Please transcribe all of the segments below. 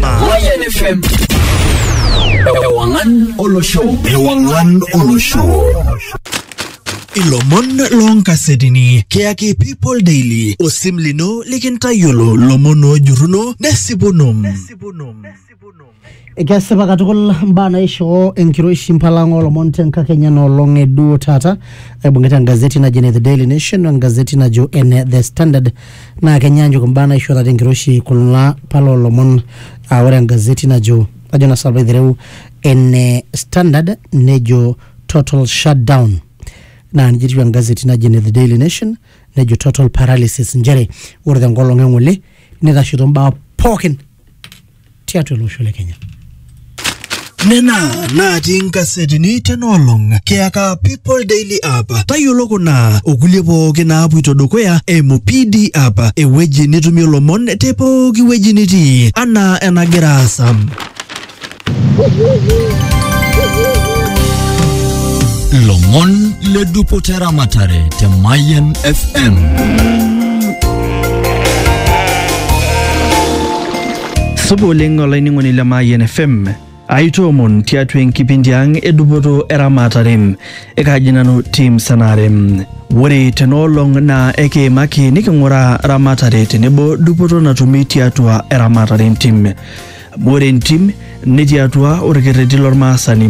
Mayan FM. Ewangan Olo Show. Ewangan Olo Show. ilomon loonkasetini keyaki people daily osim lino likintayiolo lomon oojuruno nesipuno Kesipa katukul mbaa naishoo enkiroishi mpalang olomon tenkakenya nolong eduo taata aibung'ita engazeti najo ene The Daily Nation o engazeti najo ene The Standard Naa kenyaanyuk imbaa naishorita tenkiroshi kula pala oolomon aa ore engazeti najo ajo naa sinanu aitereu ene Standard nejo total shutdown naa nijia etiu engazeti naji ene The Daily Nation nejo total paralysis nchere ore tenkolong eng'ole nitashito imbaa pookin tiatua ele osho le Kenya. Nena natii nkasetini tenoolong kiyaka People Daily App. Tayiolo kuna okulie pooki naapuito dukuya eimu PD App, ewueji nitumie lomon te pooki wueji nitii anaa enagira aasa. Lomon le dupoto eramatare te Mayan FM. Supa oleng olainining'oni le Mayian FM. Aitoomon tiatua enkipindi ang edupoto eramatare ekaaji nanu Tim Sanare. Ore tenaolong naa ekiimaki niking'uraa ramatare tenebo dupoto natumi tiatua eramatare entim. Amu ore entim netii atua orkerreti lormaasani.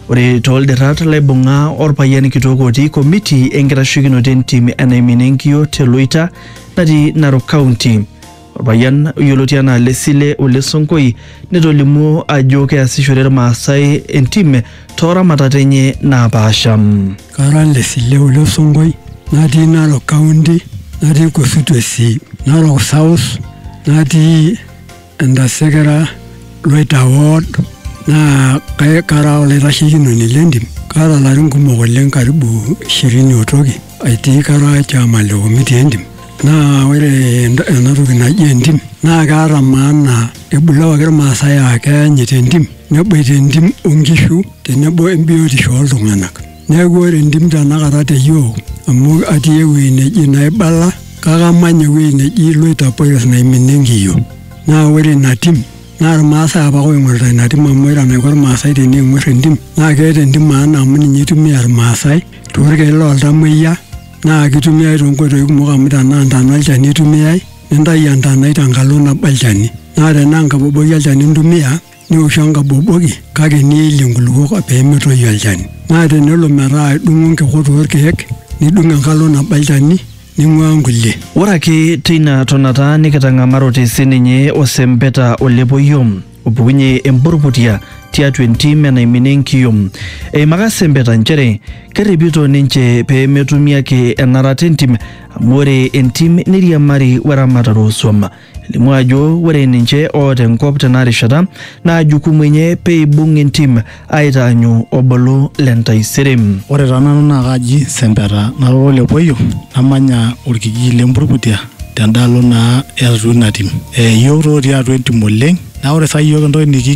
Ore tooldirat laibung'a orpayian kitok otii komiti enkitasheikinoto entim e Naimina Enkiyio te Loita natii Narok County. Orpayian oyioloti anaa Lesile Ole Sonkoi netolimuo ajo keasishore Irmaasai entim too ramatat enye naapaasha. Kara Lesile Ole Sonkoi natii Narok County natii constituency Narok South natii Entasekera Loita ward naa kara olaitasheikinoni le ntim. Kaata ilarin kumok oleng karibu ishirini o toki. Etii kara chama le komiti entim naa ore ent- ena toki naji entim naa keata maana ebulawaki irmaasai aa keanyit entim neboita entim onkishu tenebo embiotisho oltung'anak neeku ore entim tenakata te yiok amu atii ewueji neji naibala kake amanya ewueji neji iloitopolis naiminie enkiyio naa ore ina tim naa irmaasai apake oing'orita ina tim amu ore enaiko irmaasai tening'orr entim naa keeta entim maana amu ninye itumia irmaasai. toorkeek looltamoyia naa kitumiai toonkoitoi kumok amu tenaa ntana olchani itumiai nintayu entanai tenkalo nabo olchani naa tenaa enkaboboki olchani intumia nioshu enkaboboki kake niilie inkulukuok pee metoyu olchani naa tenelo metaa idung'o nkikot orkeek nidung' enkalo nabo olchani ning'uaa nkulie. Ore ake teina tonata nikitang'amarote sininye osempeta olepoyio. opukunye emburbutia tiatua entim enaiminie enkiyom. Eimaka sempeta nchere kerripito ninche pee metumi ake enarata entim amu ore entim neiriamari weramatare oosuam. Elimu ajo ore ninche oota enkop tena rishata naa jukumu enye pee eibung entim aitaanyu obulu le ntaisere. Ore taa nanu naa kaji Sempeta nara ole Poyo namanya olkijiji le Mburbutia tendaalo naa e atua ina tim. Iyiok taa otii atua entim oleng naa ore saa iyiook entoki nikingil